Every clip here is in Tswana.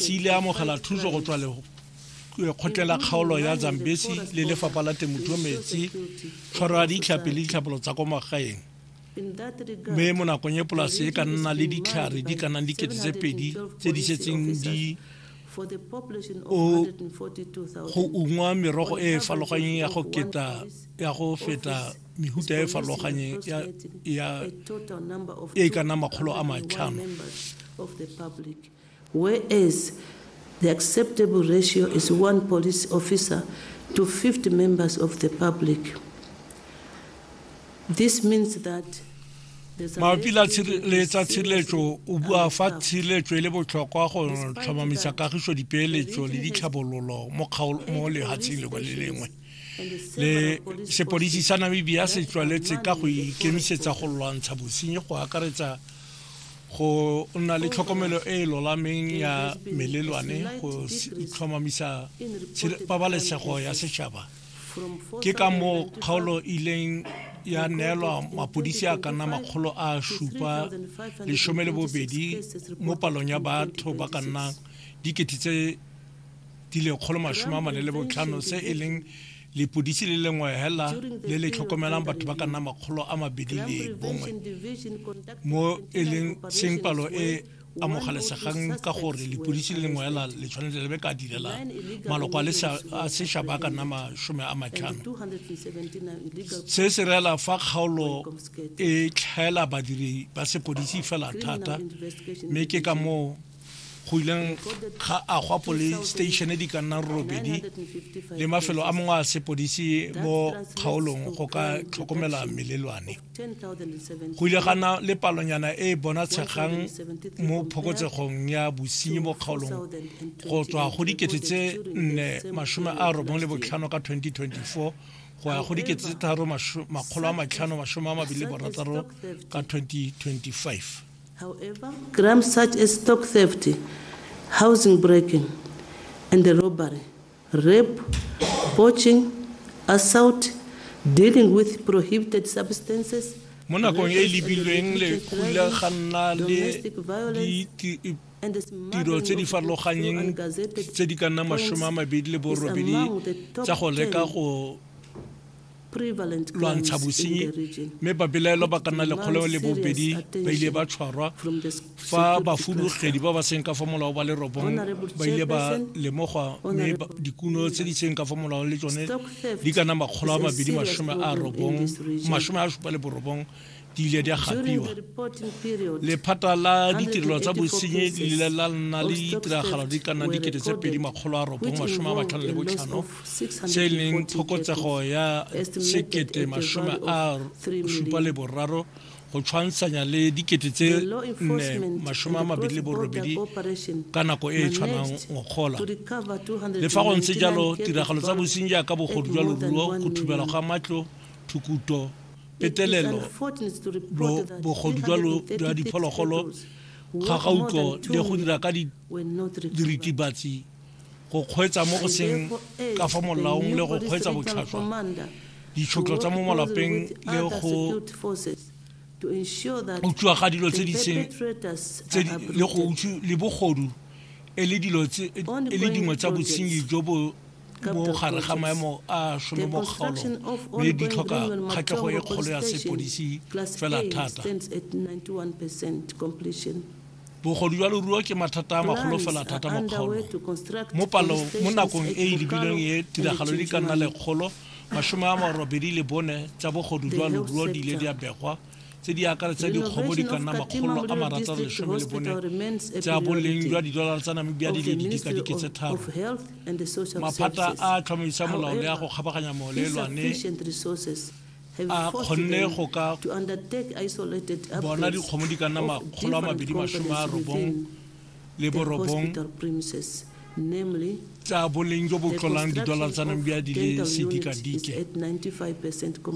se ile amogela thuso go tswa lego kgotlela kgaolo ya zambesi le lefapha la temothuo metsi tshwaro ya ditlhapi le ditlhapolo tsa kwa magaeng mme mo nakong e polase e ka nna le ditlhare di ka nang dikete tse pedi tse di setseng di o go ungwa merogo e e farologanyeng ya go keta ya go feta mehuta e e farologanyeng ya e ka nna makgolo a matlhano Whereas the acceptable ratio is one police officer to 50 members of the public. This means that there's a mabapi la less tshire- le tsa tshireletso o bua fa tshireletso e le botlhokwa go tlhomamisa kagiso dipeeletso le ditlhabololo mo kgaol- mo lehatsheng lengwe le lengwe and the le several police sepodisi sa namibia se tswaletse ka go ikemisetsa go lwantsha bosenyi go akaretsa go nna le tlhokomelo e e lolameng ya melelwane go tlhomamisa pabalesego ya setšhaba ke ka moo kgaolo e ileng ya neelwa mapodisi a ka nna makgolo a supa lesome le bobedi mo palong ya batho ba ka nnang dikete tse di lekgolo masome a mane le botlhano se e leng lepodisi le lengwe hela le le tlhokomelang batho ba ka nna makgolo a mabedi le bongwe mo e leng seng palo e amogelesegang ka gore lepodisi le lengwe hela le tshwanetse le be ka direla maloko a sešaba a ka nna masome a matlhano se se reela fa kgaolo e tlhaela badiri ba sepodisi fela thata mme ke ka moo go ileng ga agwa police station di ka nna robedi le mafelo a mangwe a sepodisi mo kgaolong go ka tlhokomela melelwane go ile gana le palonyana e e bonatshegang mo phokotsegong ya bosenyi mo kgaolong go tswa go dikete tse nne masome a robong le botlhano ka 2024 go ya go dikete tse tharo makgolo a matlhano masome a mabedi le borataro ka 2025 However, crimes such as stock theft, housing breaking and robbery, rape, poaching, assault, dealing with prohibited substances, mo nakong e e lebilweng lekgula ga nna le tiro tse di farologanyeng tse di ka nna masome a mabedi le borobedi tsa go leka go lwantsha bosenyi mme babelaelwa ba ka nna lekgolo le bobedi ba ile ba tshwarwa fa bafudugedi ba ba seng ka fa molao ba le robong ba ile ba lemogwa mme dikuno tse di seng ka fa molao le tsone di kana makgolo a mabedi masome a robong masome a supa le borobong di ile di a gapiwa lephata la ditirelo tsa bosenyi le ile la nna le ditiragalo di ka nna dikete tse pedi makgolo a robong masome a matlhano le botlhano tse e leng phokotsego ya sekete masome a supa le boraro go tshwantshanya le dikete tse nne masome a mabedi le borobedi ka nako e e tshwanang ngogola le fa go ntse jalo tiragalo tsa bosenyi jaaka bogodu jwa loruo go thubela ga matlo thukuto petelelo lo bogodu jwa lo jwa diphologolo kgakgauko le go dira ka diritibatsi go kgweetsa mo go seng ka fa molaong le go kgweetsa botlhaswa ditshotlo tsa mo malapeng le go utswa ga dilo tse di seng le bogodu e le dilo e le dingwe tsa bosenyi jo bo bo gare ga maemo a sono mo kgaolong mme di tlhoka kgatlhego e kgolo ya sepodisi fela thata bogodu jwa loruo ke mathata a magolo fela thata mo kgaolong mo palong mo nakong e e lebilweng e tiragalo di ka nna lekgolo masome a marobedi le bone tsa bogodu jwa loruo di ile di a begwa tse di akaretsa dikgomo di ka nna makgolo a marataro lesome le bone tsa boleng jwa didolara tsa namibia di le didikadike tse tharo maphata a tlhomamisa molao le a go kgabaganya moleelwane a kgonne go ka bona dikgomo di ka nna makgolo a mabedi masome a robong le borobong tsa boleng jo bo tlolang didola tsa namibia di le sedikadike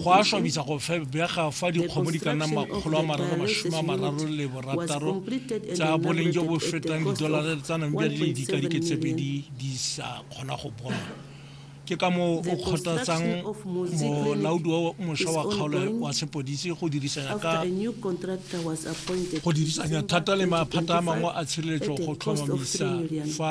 go a swabisa go febega fa dikgomo di ka nna makgolo a mararo masome a mararo le borataro tsa boleng jo bo fetang didola tsa namibia di le dikadike tse pedi di sa kgona go bonwa ke ka moo o kgothatsang molaodi wa mošwa wa kgaolo wa sepodisi go dirisanya ka go dirisanya thata le maphata a mangwe a tshireletso go tlhomamisa fa